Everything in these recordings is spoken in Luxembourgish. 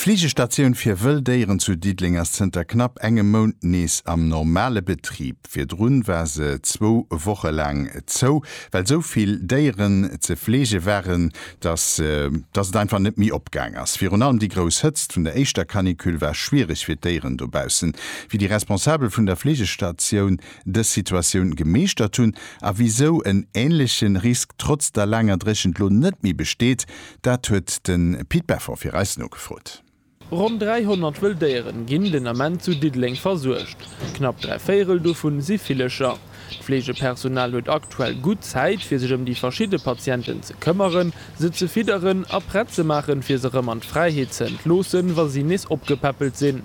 D'Fleegestatioun fir wëll Déieren zu Diddeleng ass zënter knapp engem Mount nees am normale Betrib. Virdru war se zwou Woche laang zou, well sou vill Déieren ze fleege waren, datt datt et einfach net méi opgaang ass. Virun allem déi grouss Hëtzt vun der éischter Canicule war schwiereg fir d'Déieren dobaussen. Wéi déi Responsabel vun der Fleegestatioun dës Situatioun gemeeschtert hunn a wisou en änleche Risk trotz der laanger Dréchent lo net méi besteet, Dat huet de Pit Beffort fir eis nogefrot. Ronn 300 wëll Déieren ginn den Ament zu Diddeleng versuergt. Knapp dräi Véirel dovun si Villecher. D'Fleegepersonal huet aktuell gutt Zäit fir sech ëm déi verschidde Patienten ze këmmeren, se ze fidderen a prett ze maachen fir se rëm an d'Fräiheet ze entloossen, wa si nees opgepäppelt sinn.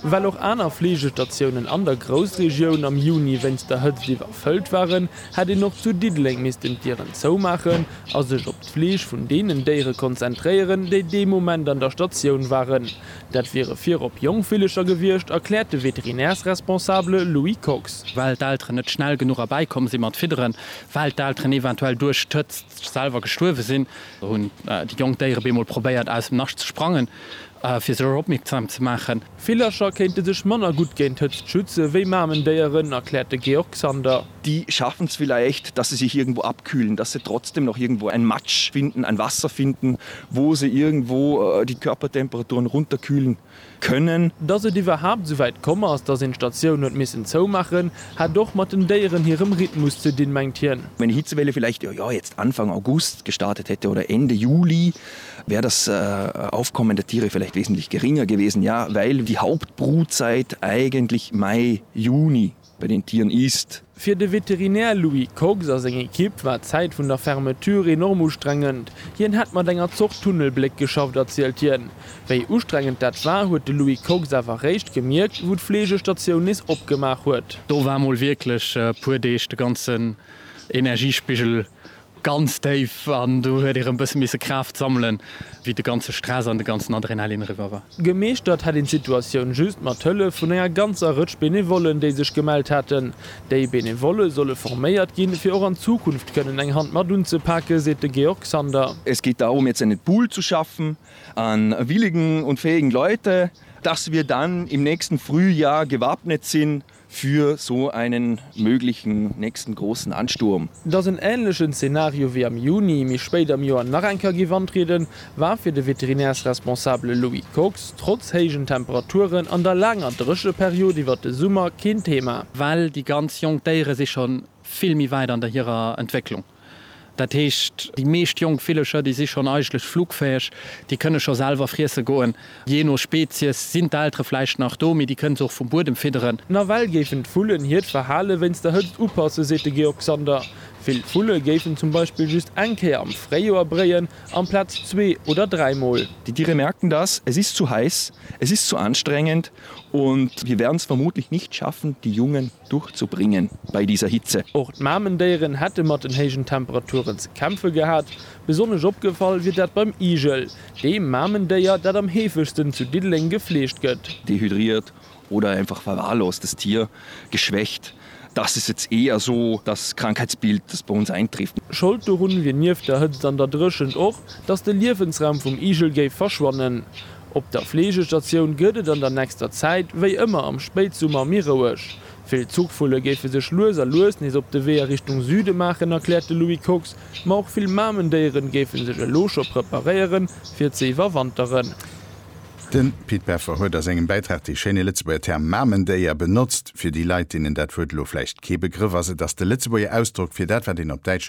Well och aner Fleegestatiounen an der Groussregioun am Juni wéinst der Hëtzt iwwerfëllt waren, hätt een och zu Diddeleng missten d'Dieren zoumaachen a sech op d'Fleeg vun deenen Déiere konzentréieren, déi dee Moment an der Statioun waren. Dat wiere virop jonk Villecher gewiescht, erkläert de Veterinärsresponsabele Louis Kox. Well d'Elteren net schnell genuch erbäi komm si mat fidderen, well d'Elteren eventuell duerch d'Hëtzt selwer gestuerwe sinn, hunn déi jonk Déiere bemol probéiert aus dem Nascht ze sprangen. Fir sech dorop opmierksam ze maachen. Villercher kéinte sech manner gutt géint Hëtzt schütze wéi Mamendéieren, erkläert de Georg Sander. Die schaffen es vielleicht, dass sie sich irgendwo abkühlen, dass sie trotzdem noch irgendwo ein Matsch finden, ein Wasser finden, wo se irgendwo die Körpertemperaturen runterkühlen können. Dass et iwwerhaapt esouwäit komm ass, dass een d'Statioun huet missen zoumaachen, hätt och mat den Déieren hirem Rhythmus ze dinn, mengt hien. Wenn die Hitzewelle vielleicht, jo, jo, jetzt Anfang August gestartet hätte oder Ende Juli, wär das Aufkommen der Tiere vielleicht wesentlich geringer gewesen, ja, weil die Hauptbrutzeit eigentlich Mai, Juni bei den Tieren ist. Fir de Veterinär Louis Kox a seng Ekipp war d'Zäit vun der Fermeture enorm ustrengend. Hien hätt mat enger Zort Tunnelbléck geschafft, erzielt hien. Wéi ustrengend dat war, huet de Louis Kox awer réischt gemierkt, wou d'Fleegestatioun nees opgemaach huet. Do war mol wierklech e puer Deeg de ganzen Energiespigel Ganz déif, an do huet ee rëm bësse misse Kraaft sammelen, wéi de ganze Stress an de ganzen Adrenalin eriwwer war. Gemeeschtert hätt een d'Situatioun just mat Hëllef vun enger ganzer Rëtsch Benevollen, déi sech gemellt hätten. Déi Benevolle solle forméiert ginn, fir och an Zukunft kënnen eng Hand mat unzepaken, seet de Georg Sander. Es geht darum, jetzt einen Pool zu schaffen an willigen und fähigen Leute, dass wir dann im nächsten Frühjahr gewappnet sind, Für so einen möglichen nächsten großen Ansturm. Dass en änlechen Zenario wéi am Juni, méi spéit am Joer nach eng Kéier géif antrieden, war fir de Veterinärsresponsabele Louis Kox trotz héijen Temperaturen an der laanger Drécheperiod iwwert de Summer keen Thema. Well déi ganz jonk Déiere si scho vill méi wäit an der hirer Entwécklung. Dat heescht, déi meescht jonk Villecher, déi si schonn eigentlech flugfäeg, déi kënne scho selwer friesse goen. Jee no Spezies sinn d'Eltere vläicht nach do, mee déi kënne se och vum Buedem fidderen. Nawell géifen d'Vullen hiert Verhale wéinst der Hëtzt upassen, seet de Georg Sander. Vill Vulle géifen zum Beispill just eng Kéier am Fréijoer bréien, amplaz zwee oder dräi Mol. Die Tiere merken das, es ist zu heiß, es ist zu anstrengend und wir werden es vermutlich nicht schaffen, die Jungen Durchzubringen bei dieser Hitze. Och d'Mamendéieren hätte mat den héijen Temperaturen ze kämpfe gehat. Besonnesch opgefall wier dat beim Igel, deem Mamendéier, dat am heefegsten zu Diddeleng gefleegt gëtt. Dehydriert oder einfach verwahrlost, das Tier geschwächt, das ist jetzt eher so das Krankheitsbild, das bei uns eintrifft. Schold dorun wier nieft der Hëtzt an der Dréchent och, dass de Liewensraum vum Igel géif verschwannen. Op der Fleegestatioun gëtt et an der nächster Zäit wéi ëmmer am Spéitsummer méi roueg. Vill Zuchvulle géife sech lues a lues nees op de Wee a Richtung Süde maachen, erkläert de Louis Kox. Ma och vill Mamendéieren géife sech elo scho preparéiere fir ze iwwerwanteren. De Pit Peffer huet a sengem Bäitrag dee schéine Lëtzebuerger Term Mamendéier benotzt. Fir déi Leit, deenen dat Wuert elo vläicht kee Begrëff ass, et ass de Lëtzebuerger Ausdrock fir dat, wat een op Däitsch